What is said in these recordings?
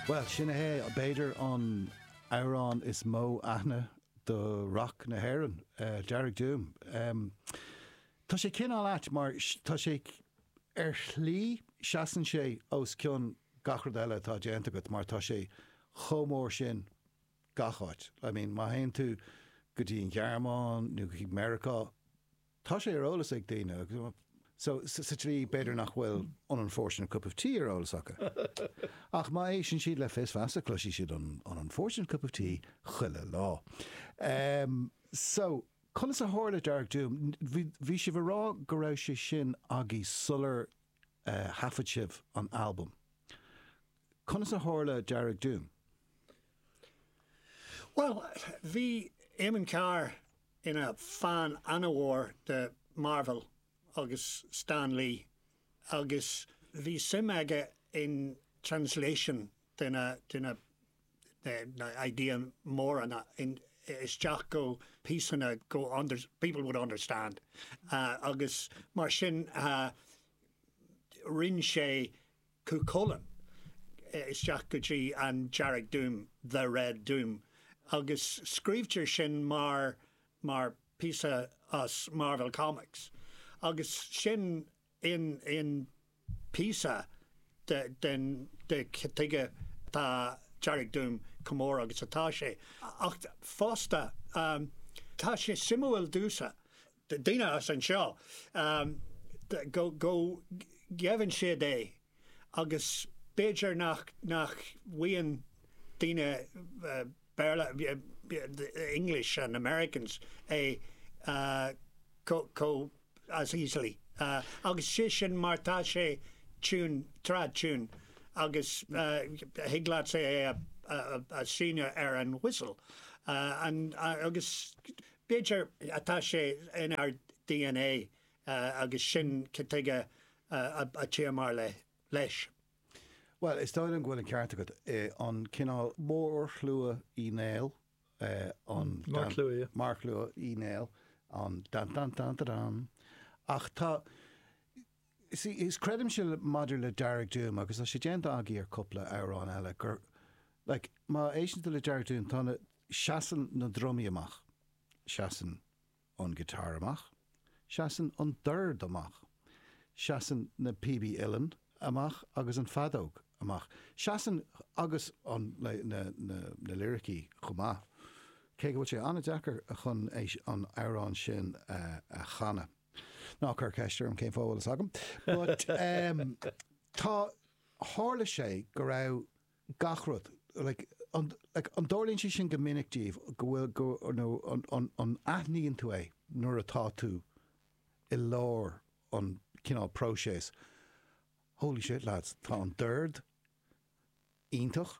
Bhuel, sin é, b'fhéidir, an t-amhrán is mó aithne do rac na hÉireann, Dearg Doom. Tá sé cineál ait mar tá sé, ar shlí, seasann sé os cionn gach rud eile atá déanta agat mar tá sé chomh mór sin gach áit. I mean, má théann tú go dtí an Ghearmáin nó go dtí Meiriceá, Tá sé ar eolas ag daoine, so sa tslí b'fhéidir nach bhfuil an unfortunate cup of tea ar eolas acu. Ach má éisteann siad le Fios Feasa cloisfidh siad an unfortunate cup of tea chuile lá. Em, so, conas a tharla Dearg Doom? Bhí, bhí sibh a rá go raibh sé sin agaibh sular, eh, thaifead sibh an albam. Conas a tharla Dearg Doom? Bhuel, bhí Éamonn Carr ina fan an-mhór de Marvel agus Stan Lee agus bhí suim aige in translation de na idéanna móra isteach go píosanna go people would understand agus mar sin rinn sé Cú Chulainn isteach go dtí an Dearg Doom, The Red Doom, agus scríobhtar sin mar píosa as Marvel Comics agus sin an píosa de cad tuige atá Dearg Doom chomh mór agus atá sé. Ach fosta, tá sé suimiúil domhsa daoine as anseo go gheibheann siad é agus b'fhéidir nach bhfaigheann daoine Béarla, the English and Americans, é chomh as easily agus sé sin mar tá sé tune, trad tune agus thig leatsa é a sheinm ar an whistle agus. B'fhéidir, tá sé inár dna agus sin cad tuige atá muid leis. Bhuel, is dóigh liom go bhfuil an ceart agat, an cineál mórshlua Uí Néill, an, Marcshlua. Marcshlua Uí Néill, an dan dan dan da dan. Ach tá, Sea, is creidimse maidir le Dearg Doom, agus tá sé déanta agaibh ar cúpla amhrán eile, gur, like, má éisteann tú le Dearg Doom, tá na, seasann na drumaí amach, seasann an guitar amach, seasann an dord amach, seasann na píobaí uilleann amach agus an feadóg amach. Seasann, agus an, like, na, na, na liricí chomh maith, cé go bhfuil sé an-deacair chun é, an amhrán sin a chanadh. Ná cuir ceist orm cén chaoi a bhfuil fhios agam. But em tá, tharla sé go raibh gach rud, like, an, like, an dtarlaíonn sé sin go minic daoibh go bhfuil, go, nó an, an, an aithníonn tú é nuair atá tú i lár an cineál próiseas, holy shit lads, tá an dord iontach.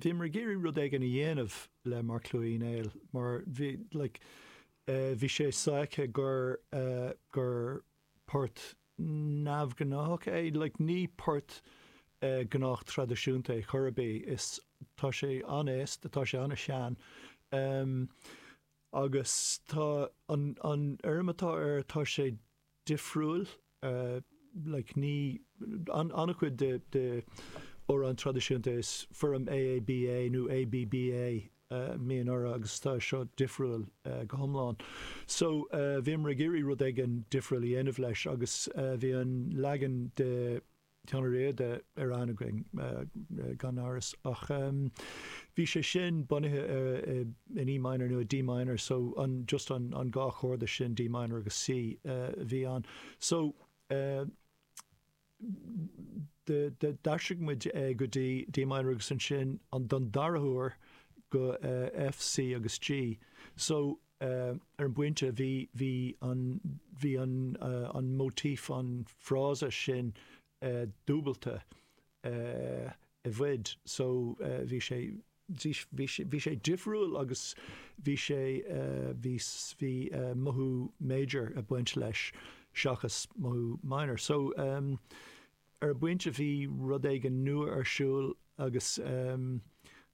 Bhíomar ag iarraidh rud éigin a dhéanamh le Marcshlua Uí Néill mar bhí like bhí sé sáite gur gur port neamhghnáthach é like ní port gnách traidisiúnta é ar chor ar bith is tá sé an-aosta tá sé an-sean agus tá an an fhoirm atá air tá sé difriúil. like ní. An-chuid de amhráin traidisiúnta is foirm AABA nó ABBA a bhíonn orthu agus tá seo difriúil go hiomlán. So bhíomar ag iarraidh rud éigin difriúil a dhéanamh leis agus bhí an leagan de. Seán Ó Riada ar aithne againn, gan amhras, ach bhí sé sin bunaithe in E minor nó i D minor, so an, just an, an dhá chorda sin, D minor agus C, a bhí ann. So, d'aistrigh muid é go dtí D minor agus ansin, an, don dara huair, go F, C agus G. So, ar an bpointe, bhí an, bhí an, an motif, an frása sin dúbailte i bhfad. So bhí sé, bhí sé, bhí sé difriúil agus bhí sé, bhí, bhí mothú major ag baint leis seachas mothú minor. So ar an bpointe bhí rud éigin nua ar siúl agus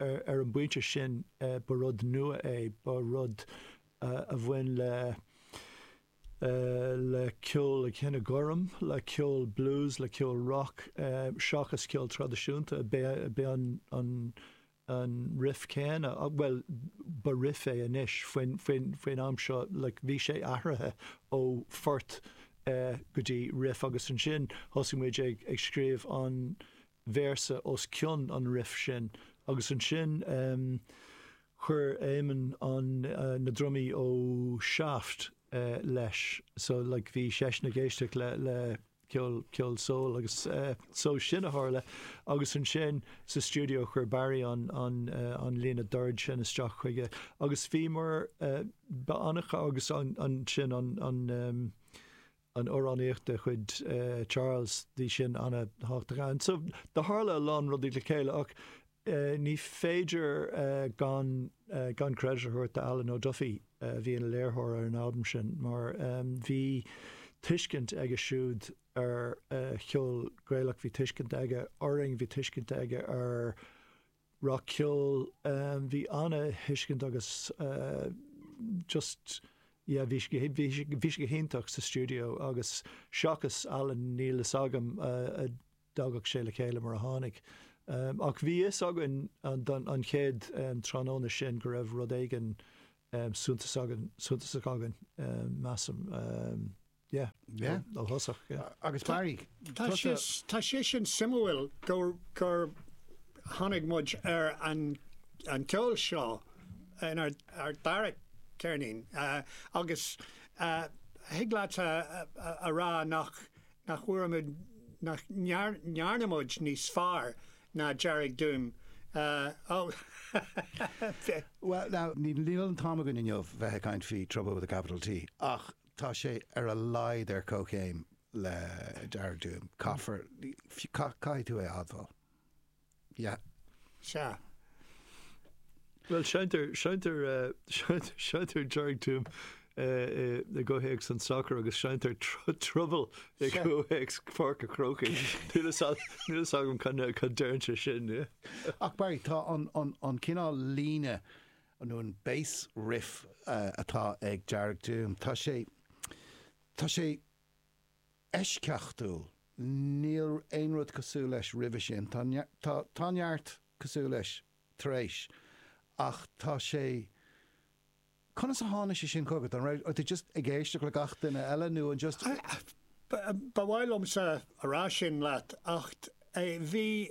Ar an bpointe sin, ba rud nua é, ba rud a bhain le le ceol an chine ghoirm, le ceol blues, le ceol rock, seachas ceol traidisiúnta. B'é an an an riff céanna, bhuel, ba riff é anois, faoin faoin faoin am seo, like, bhí sé athraithe ó phort go dtí riff agus ansin thosaigh muid ag ag scríobh an véarsa os cionn an riff sin agus ansin chuir Éamonn an na drumaí ó Shaft leis so like bhí seisean ag éisteacht le le ceol ceol soul agus so sin a tharla agus ansin sa stiúideo chuir Barry an an an líne doird sin isteach chuige agus bhíomar ba annamh agus ansin an an an amhránaíocht de chuid Charles, bhí sin an-thábhachtach ann. So, do tharla a lán rudaí le chéile ach ní féidir gan gan credit a thabhairt do Alan O'Duffy a bhí ina léiritheoir ar an albam sin mar bhí tuiscint aige siúd ar cheol Gaelach, bhí tuiscint aige orainn, bhí tuiscint aige ar rac-cheol. Bhí an-thuiscint agus just yeah bhí sé bhí sé go hiontach sa stiúideo agus seachas Alan níl fhios agam an dtagadh sé le chéile mar a tháinig. Ach bhí fhios againn an chéad tráthnóna sin go raibh rud éigin suntasach againn measaim. Tá sé sin suimiúil gur tháinig muid ar an gceol seo in ár dara ceirnín agus thig leat a rá nach bhfuair muid, nach ndearna muid níos fearr ná Dearg Doom. Bhuel, níl an t-am againn inniu bheith ag caint faoi Trouble with a Capital T ach Tá sé ar a laghad ar comhchéim le Dearg Doom. Caithfear, caithfidh tú é a admháil. Yeah. Sea. Bhuel, seinntear, seinntear, seinntear, seinntear Dearg Doom i gcomhthéacs an tsacair agus seinntear Trouble i gcomhthéacs Pháirc a' Chrócaigh. Níl fhios agam, níl fhios agam cad, cad deireann sé sin, yeah. Ach Barry, tá an, an, an cineál líne, nó an bass riff atá ag Dearg Doom, tá sé, tá sé eisceachtúil, níl aon rud cosúil leis roimhe sin, tá, tá, tá neart cosúil leis tar éis, ach tá sé, conas a tháinig sé sin chugat, an raibh tú just ag éisteacht le gach duine eile nó an just? Ba mhaith liomsa a rá sin leat, ach bhí,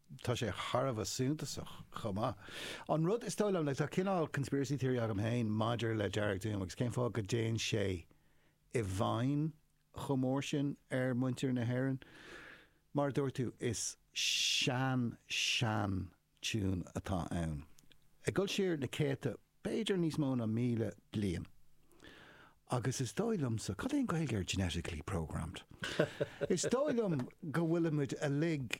tá sé thar a bheith suntasach chomh maith. An rud is dóigh liom, like, tá cineál conspiracy theory agam féin maidir le Dearg Doom agus cén fáth go dtéann sé i bhfeidhm chomh mór sin ar mhuintir na hÉireann. Mar a dúirt tú, is sean-sean-tiún atá ann, ag dul siar na céadta, b'fhéidir níos mó ná míle bliain. Agus is dóigh liomsa, cad é an Ghaeilge ar genetically programmed? Is dóigh liom go bhfuilimid uilig,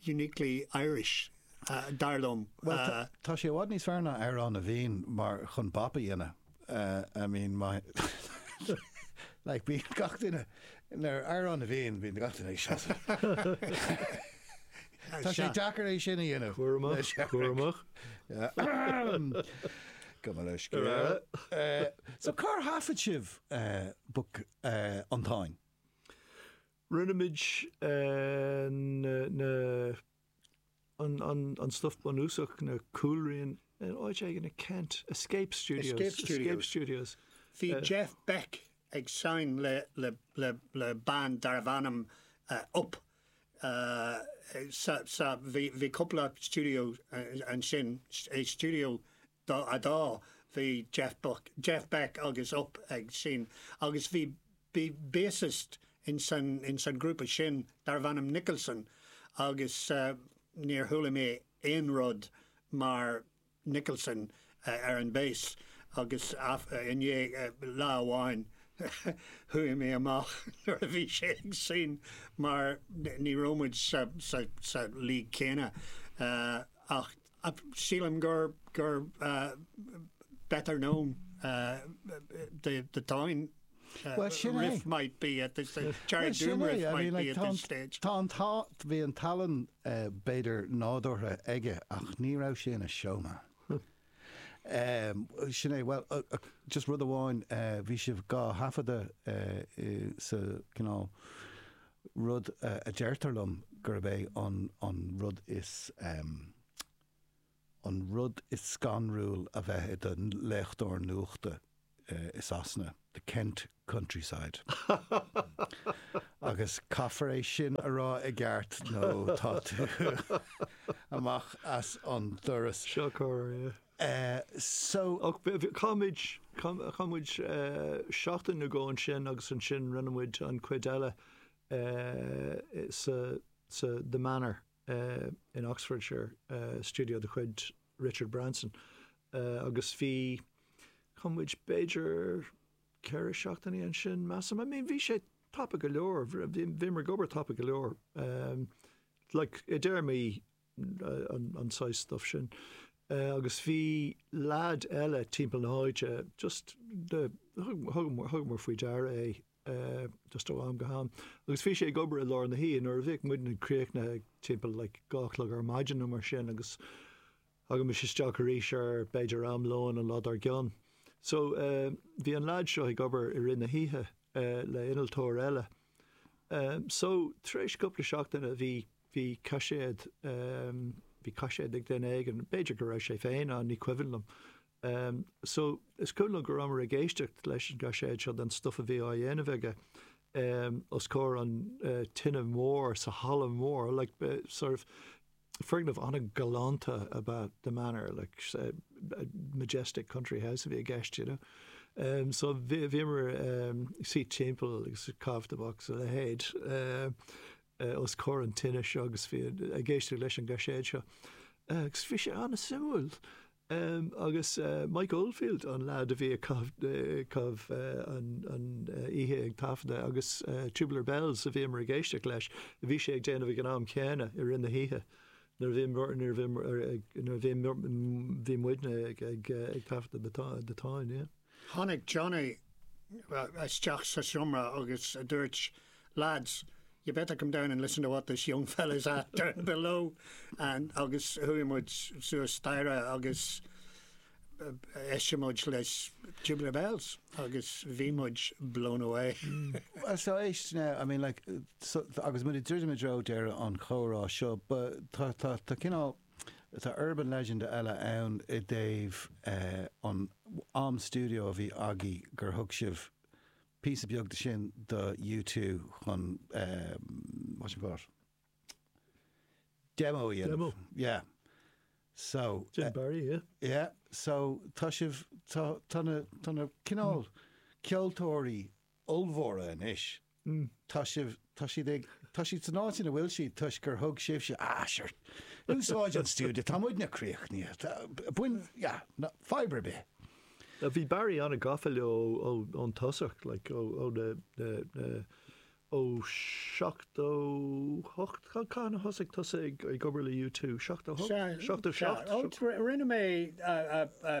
uniquely Irish, dar liom. Bhuel, tá sí i bhfad níos fearr ná Amhrán na bhFiann, mar chun bap a dhéanamh, I mean, my like bíonn gach duine, nuair Amhrán na bhFiann, bíonn gach duine ag seasamh. Tá sé deacair é sin a dhéanamh. Cúramach, cúramach. Go mba le scéal. So cár thaifead sibh Book an Táin? Rinne muid an stuif bunúsach, na cúlriain, in áit éigin i Kent, Escape Studios. Bhí Jeff Beck ag seinm le band darbh ainm Upp. Bhí cúpla stiúideo ansin, stiúideo Dá fhadá, bhí Jeff Buck, Jeff Beck agus Upp ag seinm agus bhí bassist ins an ghrúpa sin darbh ainm Nicholson agus níor chuala mé aon rud mar Nicholson ar an bass agus i ndiaidh lá amháin chuaigh mé amach nuair a bhí sé ag seinm mar ní raibh muid sa league céanna ach Ach sílim gur gur better known the the town riff might be at this stage, Charlie Doom riff might be at this stage. Tá an t-ádh, bhí an talann b'fhéidir nádúrtha aige ach ní raibh sé ina showman. Sin é, bhuel, just rud amháin, bhí sibh dhá thaifeadadh sa chontae rud a deirtear liom gurb é an rud is an rud is scanrúil a bheith i do léitheoir nuachta i Sasana, the Kent countryside. Agus caithfear é sin a rá i gceart nó tá tú amach as an doras. Seo corr, ie. so. Ach chaith muid, chaith muid seachtain nó dhó ansin agus ansin rinne muid an chuid eile sa, sa The Manor in Oxfordshire, stiúideo de chuid Richard Branson, agus bhí, chaith muid b'fhéidir ceithre seachtainí ansin, measaim. I mean, bhí sé tapa go leor, bhí, bhíomar ag obair tapa go leor. Like, i dtéarmaí an saghas stuif sin. Agus bhí leaid eile timpeall na háite just thugamar faoi deara é just ó am go ham. Agus bhí sé ag obair i lár na hoíche nuair a bhíodh muidne críochnaithe timpeall like dó a chlog ar maidin nó mar sin agus thagaimis isteach arís ar b'fhéidir am lóin an lá dár gcionn. So bhí an leaid seo ag obair i rith na hoíche le innealtóir eile. So tar éis cúpla seachtaine bhí bhí caiséad, bhí caiséad ag duine éigin, b'fhéidir go raibh sé féin ann, ní cuimhin liom. So, is cuimhin liom go rabhamar ag éisteacht leis an gcaiséad seo den stuff a bhí á dhéanamh aige os comhair an tine mór sa halla mór, like, sort of, foirgneamh an-ghalánta ab ea The Manor, like, majestic country house a bhí i gceist, you know. So, bhíomar ag suí timpeall agus ag caitheamh tobac is a leithéid. os comhair an tine seo agus bhí ag éisteacht leis an gcaiséad seo agus bhí sé an-suimiúil. Agus Mike Oldfield an leaid a bhí ag caitheamh an oíche ag taifeadadh agus Tubular Bells a bhíomar ag éisteacht leis, a bhí sé ag déanamh ag an am céanna i rith na hoíche nuair a bhí muidne ag taifeadadh The Táin. Tháinig Johnny isteach sa seomra agus dúirt, Lads, you better come down and listen to what this young fella is after below and agus chuaigh muid suas staighre agus d'éist muid leis Tubular Bells agus bhí muid blown away. Well so éist now, I mean like, so, agus muid ag druidim i dtreo deireadh an chomhrá seo, but tá cineál Tá urban legend eile ann i dtaobh an am stiúideo a bhí agaibh gur thug sibh píosa beag de sin do U2 chun what you call it demo a dhéanamh. Demo. Yeah. So. Jim Barry, yeah. Yeah. So tá sibh, tá, tá na, tá na cineál ceoltóirí ollmhóra anois. Hm, tá sibh, tá siad ag, tá siad san áit ina bhfuil siad toisc gur thug sibhse, ah, sure, úsáid an stiúideo, tá muidne críochnaithe, tá, bain, yeah, no, fadhb ar bith. Bhí Barry an-gafa leo ó, ón tosach, like, ó, ó na, na, na, ó 78, cad, cathain a thosaigh tusa ag, ag obair le U2? 78? Sea, 77? sea, ó, rinne mé, ah, ah, ah,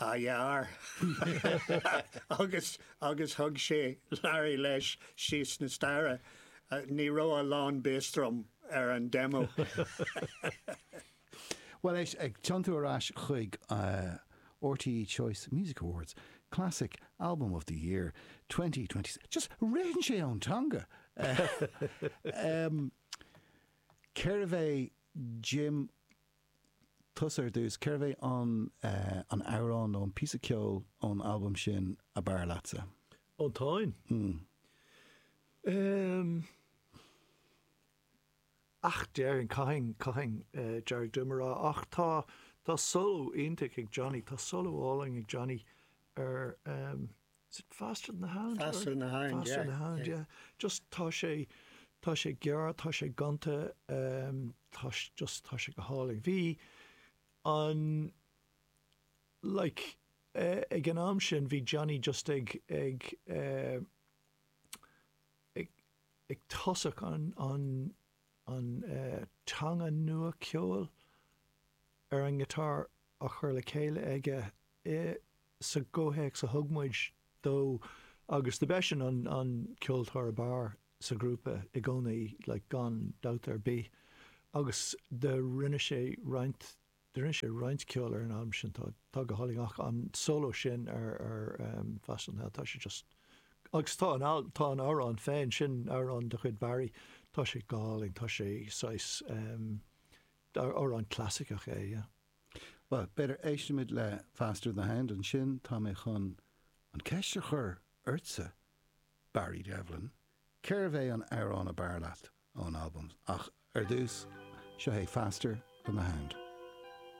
Athair, agus, agus thug sé Larry leis síos na staighre. Ní raibh a lán bass drum ar an demo. Bhuel, éist, ag tiontú ar ais chuig RTÉ Choice Music Awards, Classic Album of the Year 2020, just ritheann sé ón teanga! Cérbh é Jim tusa ar dtús, cérbh é an an amhrán nó an píosa ceoil ón albam sin ab fhearr leatsa? Ón Táin? Ehm. Ach déarfainn, caithfidh, caithfidh Dearg Doom a rá. Ach tá, tá solo iontach ag Johnny, tá solo álainn ag Johnny ar ehm, Is it faster than the hound? Faster than the hound, yeah. Faster than the hound, yeah. Just tá sé, tá sé gearr, tá sé gonta, um, tá sé, just tá sé go hálainn. Bhí an, like, eh, ag an am sin bhí Johnny just ag, ag, eh, ag, ag tosach an, an, an, eh, teanga nua ceoil ar an ngiotár á chur le céile aige i sa gcomhthéacs a thug muid dó agus do b'eisean an an ceoltóir ab fhearr sa ghrúpa i gcónaí like gan dabht ar bith agus do rinne sé roinnt do rinne sé roinnt ceoil ar an albam sin atá go hálainn ach an solo sin ar ar ehm Faster than the Hound tá sé just agus tá an al tá an amhrán féin sin amhrán de chuid Barry tá sé go hálainn tá sé saghas ehm amhrán clasaiceach é yeah. Bhuel, b'fhéidir éistfimid le Faster than the Hound, ansin tá mé chun an ceist a chur ortsa, Barry Devlin, cérbh é an t-amhrán ab fhearr leat ón albam? Ach ar dtús, seo é Faster than the Hound.